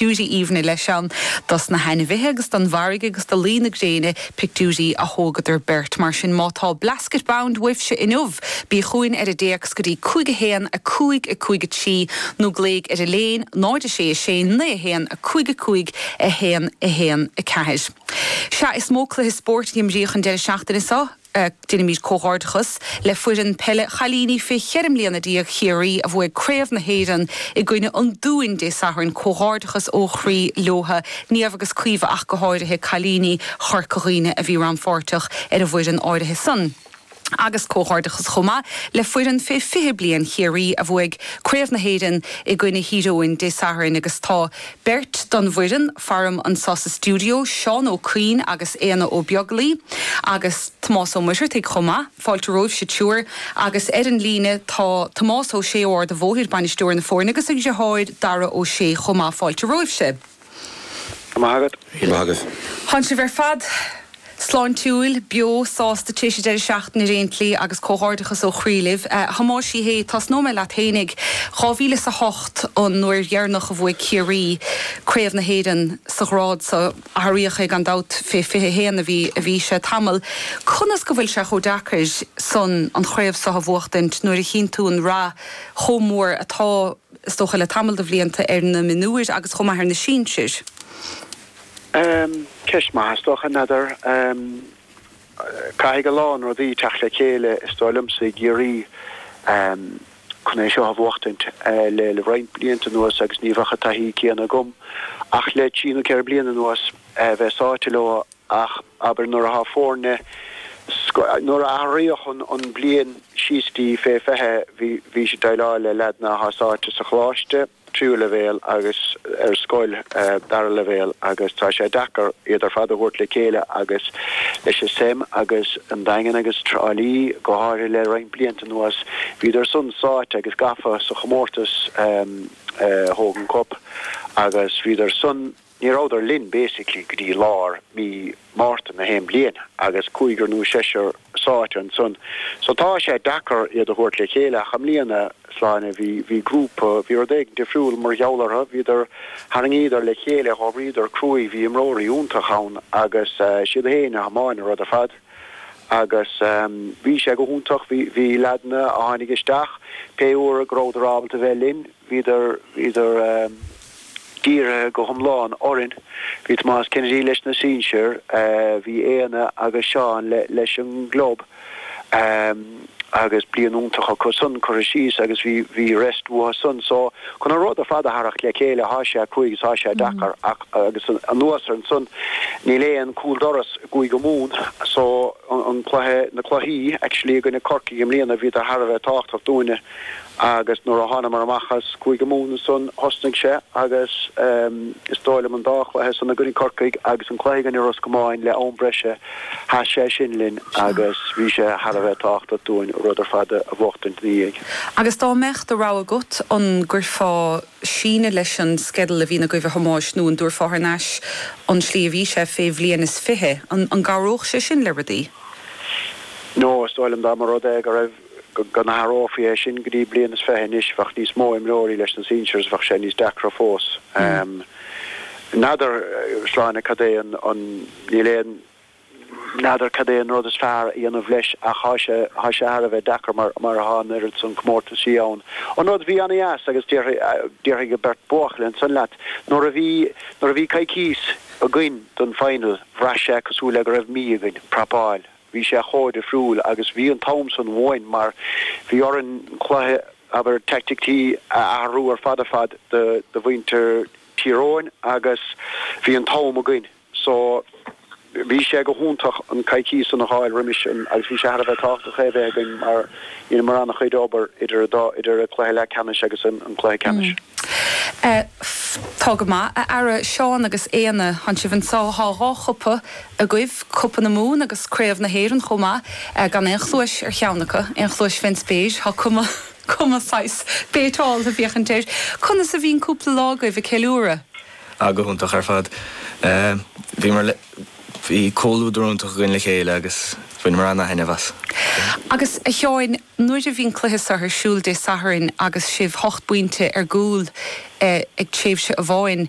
aoibhne leis ann dos na hainmhithe agus don bhfarraige agus do luí na gréine, pictiúirí a thógadar beirt. Mar sin, má tá Blasket Bound uaibhse inniu, bí chugainn ar an dtéacs go dtí cúig a haon, a cúig, a cúig a trí, nó glaoigh ar Elaine, 0 6 6 9 1 5 5 1 1 4. Sea, is mó cluiche spóirt a imríodh an deireadh seachtaine seo, Deinimid comhghairdeachas le foireann peile chailíní fé cheithre mbliana déag Chiarraí a bhuaigh Craobh na hÉireann i gcoinne an Dúin Dé Sathairn, comhghairdeachas ó chroí leotha, Niamh agus Caoimhe ach go háirithe, cailíní Chorca Dhuibhne a bhí rannpháirteach ar an bhfoireann áirithe san. Agus comhghairdeachas chomh maith le foireann fé fiche bliain Chiarraí a bhuaigh Craobh na hÉireann i gcoinne Thír Eoghain Dé Sathairn agus tá Beirt don bhfoireann, faram anso sa stiúideo, Seán Ó Cuinn agus Éanna Ó Beaglaoi, agus Tomás Ó Muircheartaigh chomh maith. Fáilte romhaibhse triúir. Agus ar an líne tá Tomás Ó Sé ó Ard a' Bhóthair, bainisteoir na foirne, agus a dhriotháir Dara Ó Sé chomh maith. Fáilte romhaibhse. Go raibh maith agat. Go raibh maith agat. Tánn sibh ar fad. Sláintiúil, beo, sásta, tar éis an deireadh seachtaine ar aon tslí agus comhghairdeachas ó chroí libh. A Thomáis Uí Shé, tosnóidh mé leat fhéinig. Dhá mhíle is a hocht an uair dheireanach a bhuaigh Ciarraí craobh na hÉireann sa ghrád so. Athraíodh é gan dabht, fé 21 a bhí sé tamall. Conas go bhfuil sé chomh deacair san an chraobh so a bhuachtaint nuair a chíonn tú an rath chomh mór atá, is dócha, le tamall de bhlianta ar na mionúir agus chomh maith ar na sinsir? Ceist mhaith, is dócha, n'fheadar. Caithfidh a lán rudaí teacht le chéile, is dóigh liomsa, i gCiarraí chun é seo a bhuachtaint. Le roinnt blianta anuas, agus ní bheadh an taithí céanna agam, ach le trí nó ceithre bliana anuas, bheith sáite leo, ach abair nuair atá foirne, nuair a athraíodh an bhliain síos dtí fé 20, bhís ag déileáil le leaideanna atá sáite sa choláiste, tríú leibhéal agus ar scoil dara leibhéal agus tá sé deacair iad ar fad a thabhairt le chéile agus leis an Sem agus an Daingean agus Trá Lí go háirithe le roinnt blianta anuas bhíodar san sáite agus gafa sa chomórtas Hogan Cup agus bhíodar san Ní rabhadar linn basically go dtí lár mí Márta na haon bliain agus cúigear nó seisear sáite ansan so tá sé deacair iad a thabhairt le chéile ach i mbliana, a Shláine, bhí, bhí grúpa, bhí rud éigin difriúil mar gheall orthu, bhíodar, tharraingíodar le chéile, dh'oibríodar cruaidh, bhí imreoirí iontach ann agus is iad fhéin a thiomáin an rud ar fad agus bhí sé go hiontach, bhí, bhí leaideanna a tháinig isteach pé uair go rabhadar ábalta bheith linn, bhíodar, bhíodar. Dírithe go hiomlán orainn, bhí Tomás Kennedy leis na sinsir, bhí Éanna agus Seán leis an gclub agus bliain iontach acu san curtha síos agus bhí rest uathu san so chun an rud ar fad a tharracht le chéile thá sé cruaidh is thá sé deacair ach agus anuas air san níl aon cúldoras i gCúige Mumhan so an cluiche, na cluichí actually i gcoinne Corcaigh i mbliana bhíodar thar a bheith tábhachtach dúinne. Agus nuair a thánamar amach as Cúige Mumhan ansan, thosnaigh sé agus is dóigh liom an dá chluiche san i gcoinne Corcaigh agus an cluiche i gcoinne Ros Comáin le am breise, sheas sé sin linn agus bhí sé thar a bheith tábhachtach dúinn an rud ar fad a bhuachtaint ina dhiaidh. Agus dá mbeadh do rogha agat, an gcuirfeá síneadh leis an sceideal a bhíonn agaibh a Thomáis nó an dtabhairfeá thar n-ais an tslí a bhí sé fé bhliain is fiche? An gcabhródh sé sin le rudaí? No, is dóigh liom dá mba rud é go raibh go n-athrófaí é sin go dtí bliain is fiche anois, bheadh níos mó imreoirí leis na sinsears, bheadh sé níos deacra fós. N'fheadar, Sláine, cad é an, níl aon, n'fheadar cad é an rud is fearr a dhéanamh leis ach thá sé, thá sé thar a bheith deacair mar, mar tá an oiread san comórtaisí ann. An rud a bhí ana-dheas agus déarfaidh, déarfaidh an beirt buachaill ansan leat, nuair a bhí, nuair a bhí coicís againn don final, bhraith sé cosúil le go raibh mí againn, prapáil. Bhí sé chomh difriúil agus bhí an t-am san uainn mar bhí orainn cluiche, abair, taicticí a athrú ar fad ar fad do mhuintir Thír Eoghain agus bhí an t-am againn. So, bhí sé go hiontach an coicís san a fháil roimis sin agus bhí sé thar a bheith tábhachtach é a bheith againn mar dheineamar an-chuid obair idir an cluiche leath ceannais agus an cluiche ceannais. Tá go maith, a fheara Seán agus Éanna, thán sibh anseo, thá dhá chupa agaibh, Cupa na Mumhan agus Craobh na hÉireann chomh maith, gan aon chluais ar cheann acu, aon chluais Vince Beige, thá cuma, cuma saghas béiteáilte ag féachaint air. Conas a bhí an cúpla lá agaibh ag ceiliúradh? Ah, go hiontach ar fad. Bhíomar le, bhí comhluadar iontach againn le chéile agus bhaineamar an-taitneamh as. Agus, a Sheáin, nuair a bhí an cluiche so ar siúl Dé Sathairn agus sibh hocht bpointe ar gcúl ag tréimhse amháin,